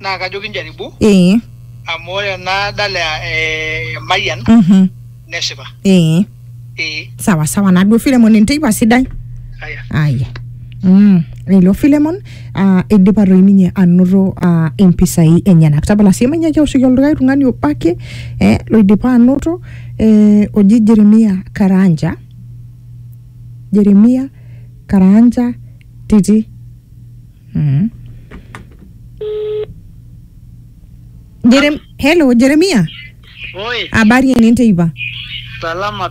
naa kajo kinjaribu ee amu ore ena dala e Mayian mhm nesipa. ee Ee. sawa sawa naduo Filemon enteipa sidai Aya. aya Mm, ilo Filemon uh, idipa toi ninye anoto uh, impisai enyenak tapala sii manyaaki aoshoki olikae tung'ani obo ake eh, loidipa anoto eh, oji Jeremia Karanja Jeremia Karanja Titi Mm. Jerem Hello Jeremia, Oi, habari ene teipa? salama.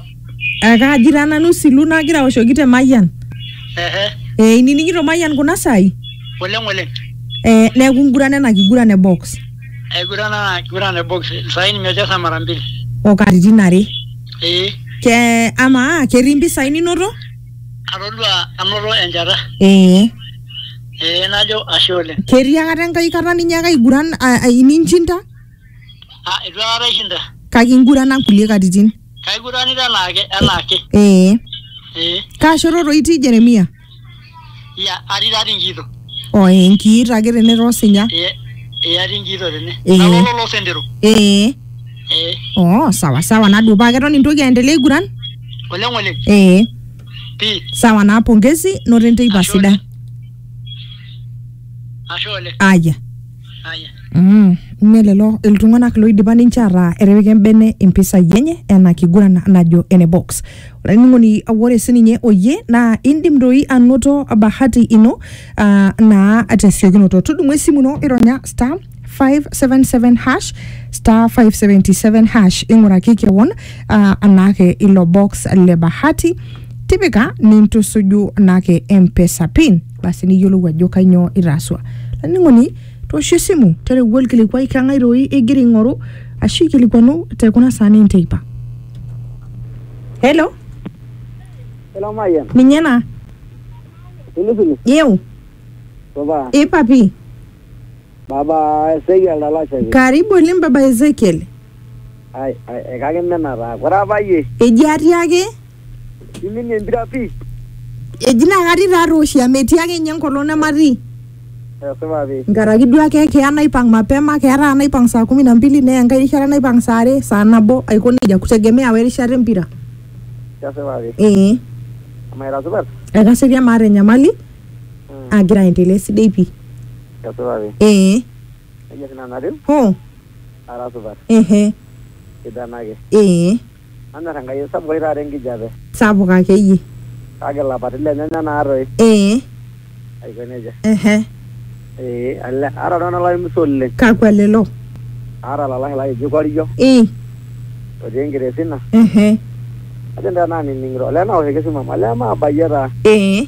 Ekaaji taa nanu silu nagira aoshoki te Mayian. Ehe, Eh, inining'ito Mayian kuna saai? oleng oleng. Eh, neeku nguran ena kiguran e box Aigurana kiguran e box. Sahi nimecheza mara mbili. o katitin are. Eh, Ke amaa ketii mpisai ninoto? Atodua anoto enchata. Ee. Ee najo ashe oleng. Ketii akata enkae kata ninyaaka aiguran ninchinda? Aa eitu aikata aishinda. Kake ingurana nkulie katitin? Kaiguranita anaake anaake. Ee. Ee. Kaa shoto toi itii Jeremia? Iya, atii taa tinkiito. Oh, eh, nkiito ake tene toosinya. Iya, iya tinkiito tene. Eh. Nalolo loo sentero. Eh. Eh. Oh, sawa sawa nadupaa keton intoki aendelea aiguran? Oleng oleng. Eh. Pii. Sawa naa pongezi noto enteipa Ashe sidai. Ashe oleng. Aya. Mm, mme lelo iltung'anak loidipa ninche ataa etipika embene impisai enye ena kiguran najo ene box olainining'oni ore sininye oyie naa indim doi anoto bahati ino uh, naa tesiokinoto tudumu esimu ino ironya star 577 hash star 577 hash ing'uraki kewon uh, anaake ilo box le bahati tipika nintusuju naake mpesa pin basi niyiolou ajo kainyoo itaaswa laning'oni toosho esimu tereu olkilikuai keng'ae doi igira aing'oru ashu ikilikuanu te kuna saani enteipa helo Hello, Mayan. ninye ena Pilipili. yeu Supa. ipapi Baba Ezekiel Talasha. Karibu oleng baba Ezekiel. Ai, ai, ekakimena taa. Ore apa yie. Eji atii ake. Iminie empira pii. Eji naa katii taa tooshi amu etii ake ninye enkolong nematii. Esipa pii. Nkaraki duo ake keya naipang mapema, keya taata naipang saa kumi na mbili neya enkae rishata naipang saa are, saa nabo aiko nejia kutegemea we rishata empira. Kesipa pii. Ee. Amaa ira supat? Aira serian maata enyamali. agira aendelea esidai pii Kesipa pi. ee Kajo oshi nanu atiu, hoo ara supat. ehe Sidan ake. ee Nanyor Enkai. Sapuk oshi taata enkijape. sapuk akeyie. Kake ilapaitin lenyanya naa toi. ee Aiko nejia. ehe Ee ale. Aata iltung'ana laimisu oleng. kakua lelo? Aata olalashe lai oji Korio, ii otii Enkiresina. ehe Kajo nanu tenaa anining'ito. Olee naoshoki esimu amu olee maabayie taa. ee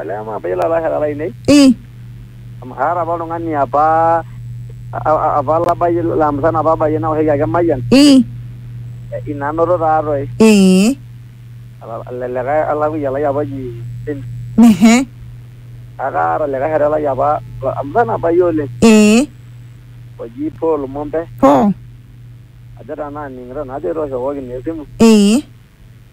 Olee amaa abayie ilalashera lainei Eh, amu kaata apa oltung'ani apa a- a- apa labayie laa musana apa abayie naoshoki ake emayian eh, eh, ina anoto taatoi eh, Ala- ele likae olakuya lai apa oji Tim ehe, kake kaata likae shore lai apa la- musana abayie oleng eh, oji Paul Mombe po, ajo tenaa aning'ito najo etooshokoki naa esimu eh,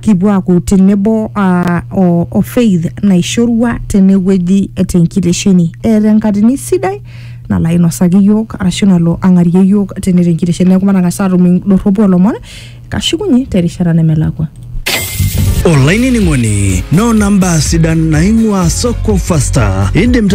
kipuo aaku tenebo aa o, o faith naishorua tenewueji tenkitesheni eeta enkatini sidai nalo ainosaki yiok arashu nalo ang'arie yiok tene tenkitesheni neeku matang'as atum indorropu olomon kashukunye terishata nemelakua olainining'oni noona mbaa sidan naing'ua soko fasta indim taa